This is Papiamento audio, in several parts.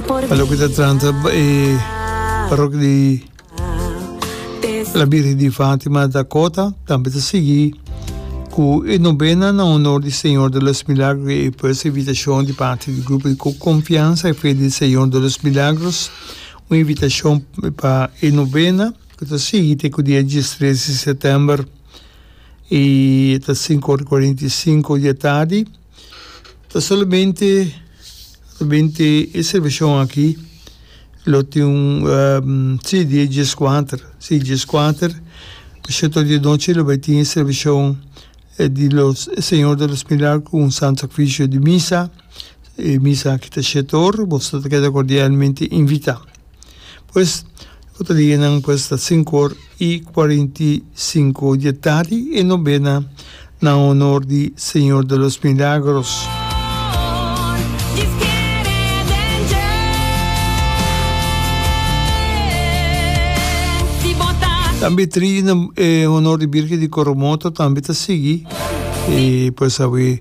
Pa loke ta tranta e parrokia di La Birgen di Fatima ta kota, tambe ta sigui ku e nobena na honor di Señor de los Milagros i e pues invitashon di parti di grupo di Confianza y Fe del Señor de los Milagros, un invitashon pa e nobena ku ta sigui te ku dia diestres di sètèmber i ta sinku ora i kuarenta i sinku di e tardi. Ta solamente solamente e servicion aki lo tin un si di e djes kuater si e djes kuater pa shatoh di anochi lo bai tin e servicion di los Señor de los Milagro ku un santo sakrifisio di misa e misa aki ta shatoh boso ta keda kordialmente invita. Pues, ku ta di e nan pues ta sinku or i kuarenta i sinku di e tardi e nobena na honor di Señor de los Milagros. Tambe tri na honor di Birgen di Coromoto tambe ta sigui, i pues awe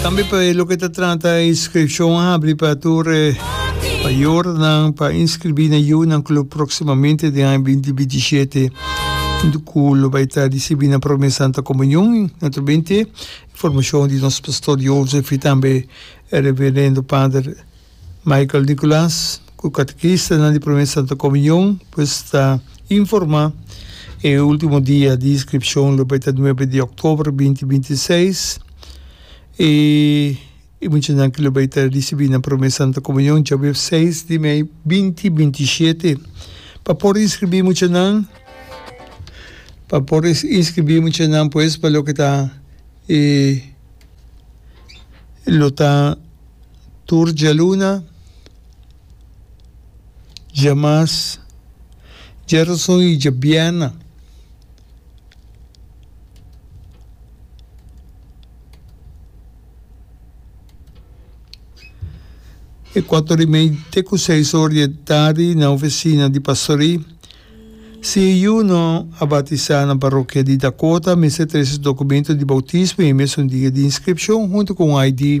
Tambe pa e loke ta trata inskripshon a habri pa tur e mayornan pa inskribí na yu nan klup próksimamente den aña binti binti i shete ku lo bai ta risibí nan promé Santa Komunion. I naturalmente informashon di nos pastor Jozef i tambe e Reverendo Pader. Michael Nicolas, cu catequistanan di Prome Santa Comunion, pues ta informa e ultimo dia di inscripcion lo bay ta nuebe di october binti binti i seis y e muchanan cu lo bay ta ricibi na Prome Santa Comunion djabe seis di mei binti binti i shete. Pa por inscribi muchanan pa por inscribi muchanan pues pa loke ta e lo ta. tur djaluna, djamas, djarason i djabièrna. E kuato di mei te ku seis or di e tardi na ofisina di pastorí. Si e yu no a batisá na parokia di Dakota, mester trese dokumentu di boutismo i e mesun dia di inskripshon huntu ku un ID.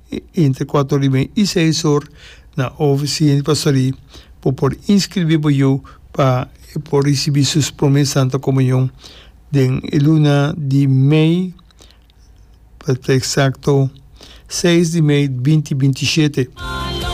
Inter kuater ora di mei i seis or na ofisin di pastorie bo por inskribí bo yu pa e por risibí su promé Santa Komunion den e luna di mei, pa ta eksakto seis di mei binti binti i shete.